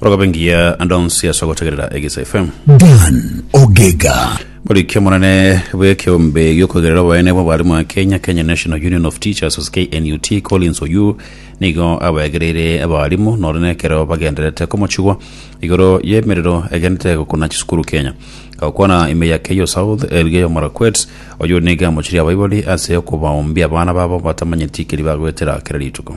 Orogabe ngiya ande onsi ase ogotegerera Egeisa FM. Dan Ogega. Moriki omonene bw'ekeombe giokoigerera oboene bw'abarimo Kenya, Kenya National Union of Teachers ase KNUT, Collins Oyuu nigo abaegereire abarimo nore nekero bagendererete komochigwa igoro y'emerero egenderete gokuna chisukuru Kenya. Agokwana ime ya Keio South, Elgeyo Marakwet, Oyuu nigo amochirie abaibori ase okobaoombia abana babo batamanyeti keri bagoetera kera rituko.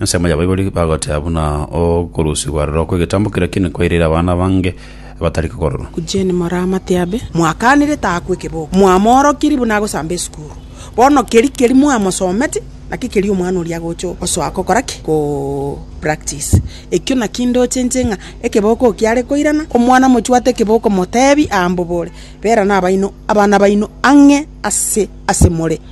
Ensemo ya Baibori bagoteba buna okorusigwa aroro kw'egetambo keria ki'nene kwairire abana abange abatari kokororwa. Eugene Moramatiambe, Mwakanire taakwa ekeboko, mwamoorokirie buna agosamba esukuru. Bono keria keria mwamosometi, naki keria omwana oria agocha osoa gokora ki? Ko practice. Ekio nakio ndoche nche ng'a ekeboko kiare koirana, omwana mochwate ekeboko motebi aambobore, Bera nabaino abana baino ang'e ase ase more.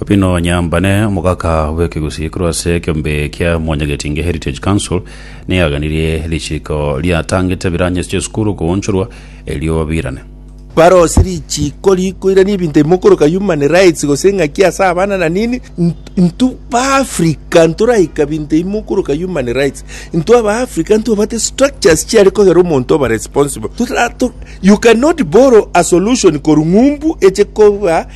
Opino Nyambane, omogaka bw'ekegusii korwa ase ekeombe kia Mwanyagetinge Heritage Council, neaganirie richiiko riatangete biranyesi ch'esukuru koonchorwa erio babirane. Barose richiiko rikoirania ebinto ebimo okoroka human rights gose eng'aki ase abana na nini. Intwe Baafrika ntoraika binto ebimo okoroka human rights. Intwe Abaafrika ntobwate structures chiare kogera omonto oba responsible. Totato, you cannot borrow a solution korwa ng'umbu eche koba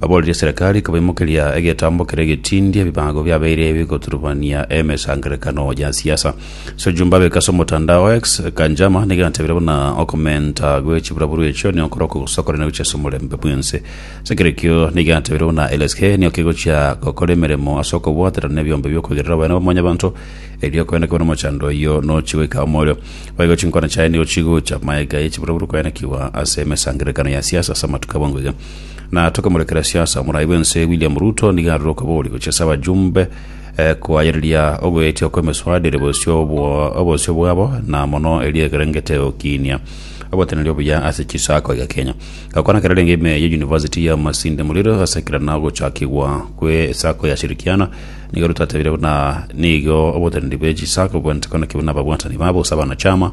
Aboorerie eserekari kobaimokeria egetambo keria getindi ebibago biabeire bigoturubania emesangererekano ya siasa. Sejumba abeka ase omotandao X, Kanjama negerantabire buna okomenta gwe chiburaburu echio nigo korokwo gosakorana gochia ase omorembe bwense. Ase ekerekio negerantabire buna LSK nigo kegochia gokora emeremo ase okobwaterana nebiombe biokoigerera oboyene bwa mwanyabanto erio koende kobe nomochando oyio nochi goika omorio. Boigo chinkwana chiaye nigo chigocha maega ye chiburaburu koenekigwa ase emesangererekano ya siasa ase amatuko abwango iga. Na tokemorekera siasa omorai bwense William Ruto nigo arure okobori gochia ase abajumbe eh, koayereria ogoetia kw'emeswaado ere bosio obwo- obosio bwabo na mono eria ekerengete gokiinia oboteneneri obuya ase chisaako iga Kenya. Gakwana kerarenge ime ya University ya Masinde Muliro ase ekerana ogochakigwa kwe esaako ya Shirikiana nigo Ruto atebire buna nigo oboteneneri bwe chisaako bwenerete konakiwa nababwatani babo ase abanachama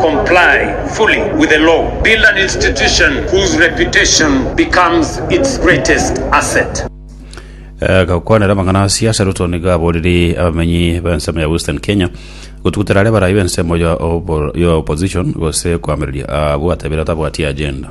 comply fully with the law, build an institution whose reputation becomes its greatest asset. Agakwanera amang'ana aase ase Ruto nigo aboriri abamenyi b'ensemo ya Western Kenya gotugutera are barai b'ensemo ya obo- ya opposition gose koamereria abwo atebire atabwati agenda.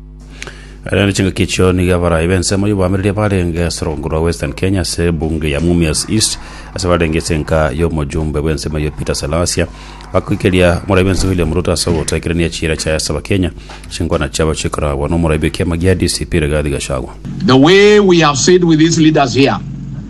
Ere chingaki echio niga abarai b'ensemo y'oboamereri barenge ase orongo rwa Western Kenya ase ebunge ya Mumias East ase barenge ase enka y'omojumbe bw'ensemo eyio Peter Salasia bakoikeria omorai bw'ensemo William Ruto ase ogotekerania chiira chiaye ase abakenya chinkwana chiabo chikoragwa n'omorai bw'ekiama gia DCP Rigathi Gachagua. The way we have said with these leaders here,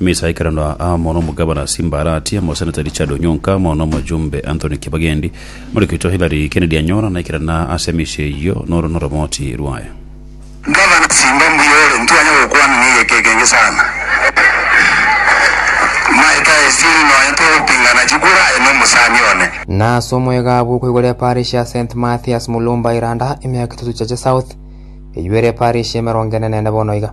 Ime esaa ekerando aa, mono omogabana Simbarati, omoseneta Richard Onyonka, mono omojumbe Anthony Kibagendi, Morekito Hilary Kennedy Anyora, na ekeranda ase emechie eyio noro noromoti rwaye. Gavana Simba mbuya ore, ntwanya gokwana negeka ekengi sana. Maeta esiri nonya togopingana chikura aye nomosani one. Na ase omwegabu okoigora eparish ya St Mathias Mulumba Iranda, emiaka etato chiache south, eywo ere eparish y'emerongo ene nene bono iga.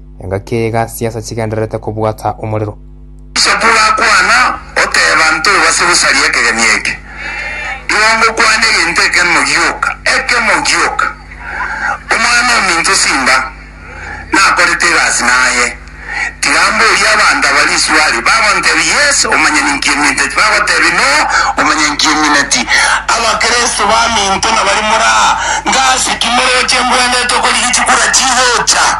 Engaki ey'iga chinsa chigendererete kobwata omorero. Isekuru akwana, oteeba, Ntobase gosaria ekegeni eke. Igo ngokwana egento ekemo gioka, ekemo gioka. Omwana-o-minto simba nakorete egasi naye. Tiga mborie abanto aba riswali, bagontebia Yes, omonyene nkiminto, tibagotebia No, omonyene nkimineti. Abakristo baminto nabari moraa, ngase ki moroche mbwenerete okorigia chikura chigocha?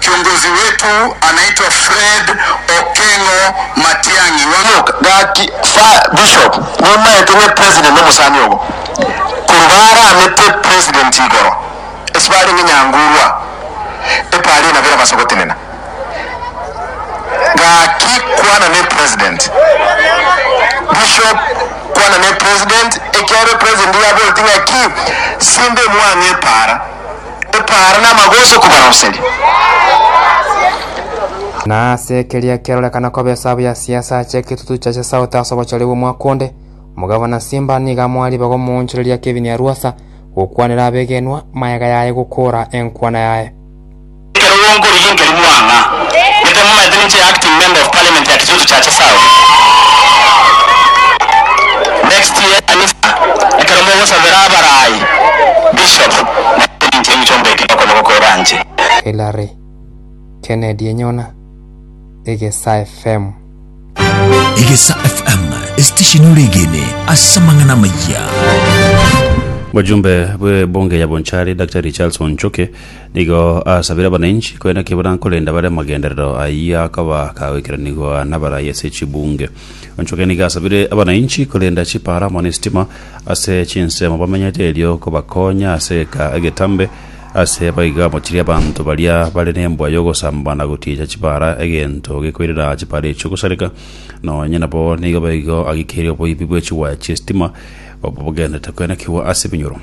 Kiongozi wetu anaitwa Fred Okengo Matiang'i wa. Omoka, gaki, fa, bishop, nimaete ng'e president nomosani ogo, korwa baramete president igoro, ase barenge nyangurwa, epari enabo erabasa gotenena. Gaki, kwana ne president. Bishop, kwana ne president, ekiagera president nigo aboreti ng'aki, simbe mwang'e epara. gotaara namagoso kobaroseria. Na ase ekeria kerorekana koba esabu ya siasa ache eketutu cha chesauti ase obochore bw'omwaka onde, omogavana Simba nigo amoa ribaga omoonchoreria Kevin Arwasa gokwanera abegenwa mayega yaye gokoora enkwana yaye. Ekero gwonkorigwe nkeri mwang'a gete momanyete ninche acting member of parliament ya Kitutu Chache South. Next year kanisa ekero mogosabera abaraai Bishop, Naki inche inchomba ekero okonya gokoira anche? Hillary, Kennedy enyona Egesa FM. Egesa FM, esitesheni oregene ase amang'ana amayia. Bojumbe bw'ebunge ya Bonchari Daktari Charles Onchoke nigo asabire abananchi korenda ki barankorenda bare amagenderero ayio akaba kagoikeranigwa n'abarai ase chibunge. Onchoke nigo asabire abanainchi korenda chipaara amo nesitima ase chinsemo bamenyete erio kobakonya ase eka egetambe ase baigo amochirie abanto baria bare nembwa yogosamba na gotiecha chipaara egento gekoirera chipaara echio gosareka nonye nabo nigo baigo agikeirie oboibi bwechiwaya chiesitima obo bogendete koenekigwa ase ebinyoro.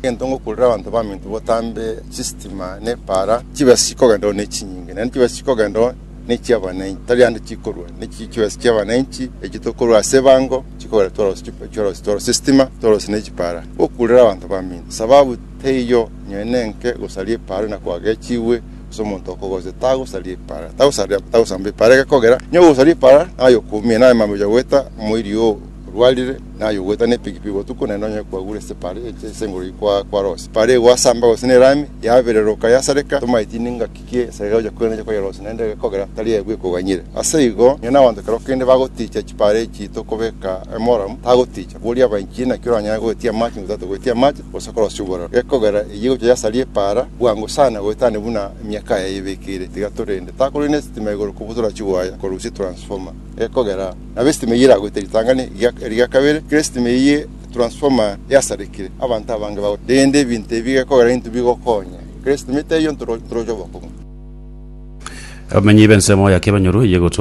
Egento ngokurera abanto baminto botambe chisitima nepaara chibesi chikogenderwa nechinyinge naende chibesi chikogenderwa ne chi'abananchi, tari ande chikorwa, ne chi- chibesa chi'abananchi echio tokorwa ase ebango, chikogera tworosia chip- chworosia tworosia estima, tworosia ne chipara, gokuurera abanto bamino. Sababu teiyo nonya nenke gosaria epara ng'a kwagechigwe ase omonto okogocha, tagosaria epara, tagosaria tagosamba epara egekogera, nonya ogosaria epara naye okoumia, naye mambia ocha goeta omoiri oo orwarire, naye ogoeta ne epikipiki botuko naende nonya kwagure ase epara eye ase enguru eyio kwa- kwarosia. Epara eye gwasamba gose ne erami, yabereroka yasareka tomaeti ningaki. Naki esegeka gocha kwene neche koyerosia, naende ekogera tari eye bweka oganyire. Ase igo, onye nabanto ekero kende bagotiicha chipaare chiito kobeka emoramu, tagotiicha, boria abainchiri naki oranyare goetia amache ng'a tato goetia amache, gose korosia oborero. Ekogera eyio egocha yasaria epaara bwango sana goetania buna emiaka aya yayebekeire. Tiga torende, takorina esitima igoro kobutora chiwaya korusia transformer. Ekogera nabo esitima eyio eragoite ritang'ani eria eria kabere, kera esitima eyio transformer yasarekire, abanto abange bagotiicha. Rende ebinto ebi gekogera intwe bigokonya. Kristo, mita eyio ntoroche obokong'u. Abamenyi b'ensemo ya Kebanyoro eyegotwa.